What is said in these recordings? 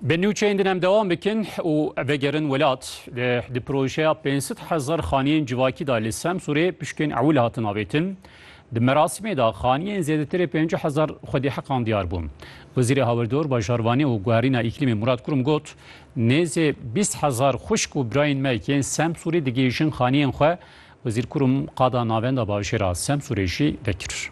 Bi nûçeyên din em dewam bikin û vegerin welat di projeya 500 hezar xaniyên civakî da li Semsûrê pişkên ewil hatin avêtin. Di merasîmê de xaniyên zêdetirê 50 hezar xwedî heqan diyar bûn. Wezîrê Hawirdor, Bajarvanî û Guherîna Îklîmê Murad Kurum got, Nêzê 20 hezar xwişk û birayên me yên Semsûrê digihîjin xaniyên xwe. Wezîr Kurum qada navenda bajêra Semsûrê jî vekir.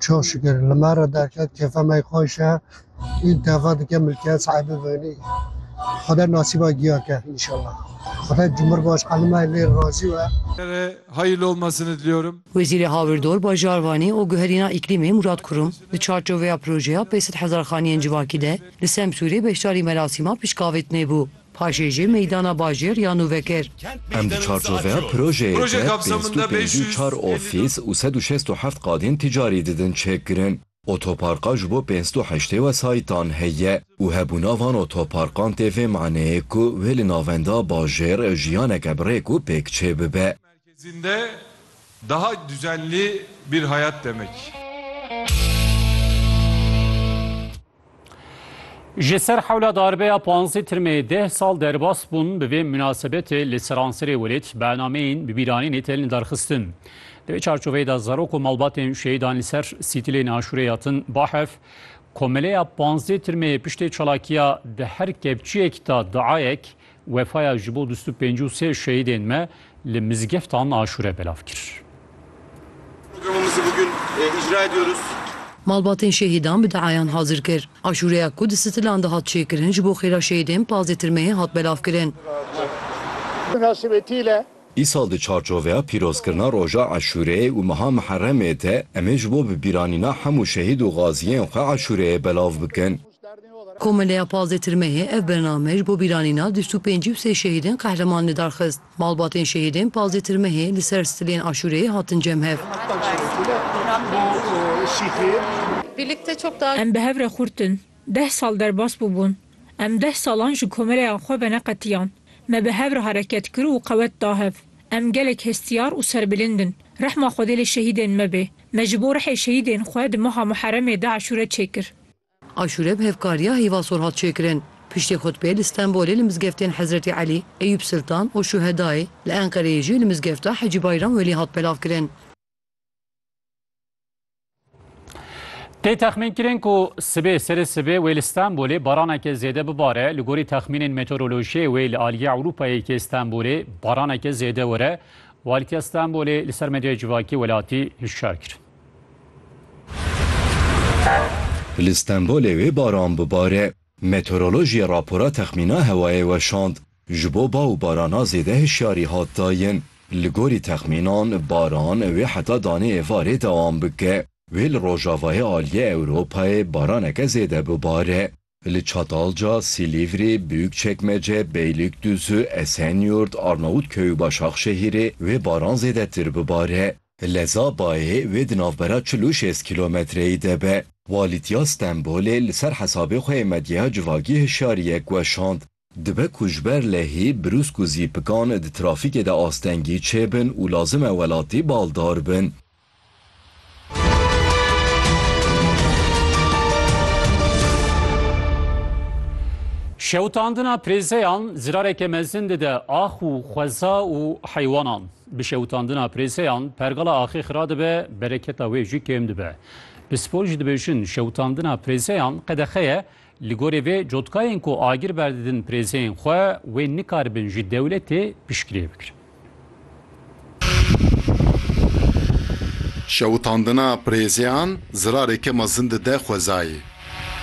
Çok şükür li me re derket kêfa me xweş e û deva dike milkiyet sahibi bibînî. Xweda nasîba giya ke înşallah. Xweda Cumhurbaşkanî me lê razî be. re hayırlı olmasını diliyorum. Wezîrê Hawirdor, Bajarvanî û Guherîna Îklîmê Murad Kurum di çarçoveya projeya pêşîd hezarxaniyên civakî de li Semsûrê beşdarî merasîma piştgavêtinê bû. Paşê jî meydana bajêr ya nû vekir. Em di çarçoveya projeyê de pênc sed û pêncî û çar ofîs û sed û şêst û heft qadên ticarî didin çêkirin. Otoparka ji bo pênc sed û heştê wesayîtan heye û hebûna van otoparkan tê vê maneyê ku wê li navenda bajêr jiyaneke bi rêk û pêk çêbibe. Merkezinde daha düzenli bir hayat demek. Ji ser hewla darbeya panzdeh tirmê deh sal derbas bûn, bi vê minasebetê li seranserê welêt bernameyên bi bîranînê tên derxistin. Di vê çarçoveyê de zarok û malbatên şehîdan li ser sîtilên aşûrê hatin bahev. Komeleya panzdeh tirmê piştê çalakiya di her kevçiyek de duayek Wefaya ji bo du sed û pêncî û sê şehîdên me li mizgeftan aşûre belav kir. Malbatên şehîdan bi diayan hazir kir. Aşûreya ku di Sitilan de hat çêkirin ji bo xêra şehîdên pazdeh tirmeyê hat belavkirin. Îsal di çarçoveya pîrozkirina roja Aşûreyê û meha Miheremê de em ê ji bo bibîranîna hemû şehîd û gaziyên xwe aşûreyê belav bikin. Komeleya Pazdeh Tirmeyê ev bername ji bo bîranîna du sed û pêncî û sê şehîdên qehreman lidar xist. Malbatên şehîdên Pazdeh Tirmeyê li ser stilên Aşûreyê hatin cemhev. Em bi hev re xurtin. Deh sal derbas bûbûn. Em deh salan ji komeleyan xwe veneqetiyan. Me bi hev re hereket kir û qewet da hev. Em gelek hestiyar û serbilind in. Rehma Xwedê li şehîdên me bê. Me ji bo rihê şehîdên xwe di meha Muheremê de aşûre çêkir. Aşûre bi hevkariya Hîva Sor hat çêkirin. Piştî xutbê li Stenbolê li mizgeftên Hezretî Elî, Eyûb Siltan û Şûhedayê, li Enqereyê jî li mizgefta Hecî Bayram Welî hat belavkirin. Tê texmînkirin ku sibê serê sibê wê li Stenbolê baraneke zêde bibare. Li gorî texmînên meteorolojiyê wê li aliyê Ewropayê yê Stenbolê baraneke zêde were. Walîtiya Stenbolê li ser medyaya civakî welatî hişyar kirin. Li Stenbolê wê baran bibare. Meteorolojiyê rapora texmîna hewayê weşand. Ji bo ba û barana zêde hişyarî hat dayin. Li gorî texmînan baran wê heta danê êvarê dewam bike. Wê li rojavayê aliyê Ewropayê baraneke zêde bibare. Li Çatalca, Silîvrî, Bûyukçekmece, Beylîkdûzû, Esenyurt, Arnavutköy û Başakşehîrê wê baran zêdetir bibare. Leza bayê wê di navbera çil û şêst kîlometreyî de be. Walîtiya Stenbolê li ser hesabê xwe yê medyeya civakî hişyariyek weşand. Dibe ku ji ber lehî brûsk û zîpikan di trafîkê de astengî çêbin û lazim e welatî baldar bin. Şewitandina prêzeyan zirareke mezin dide ax û xweza û heywanan. Bi şewitandina prêzeyan pergala axê xira dibe, bereketa wê jî kêm dibe. Pispor jî dibêjin şewitandina prêzeyan qedexe ye Li gorî vê cotkayên ku agir berdidin pirêzeyên xwe wê nikaribin ji dewletê piştgiriyê bikirin. Şewitandina pirêzeyan zirareke mezin dide xwezayê.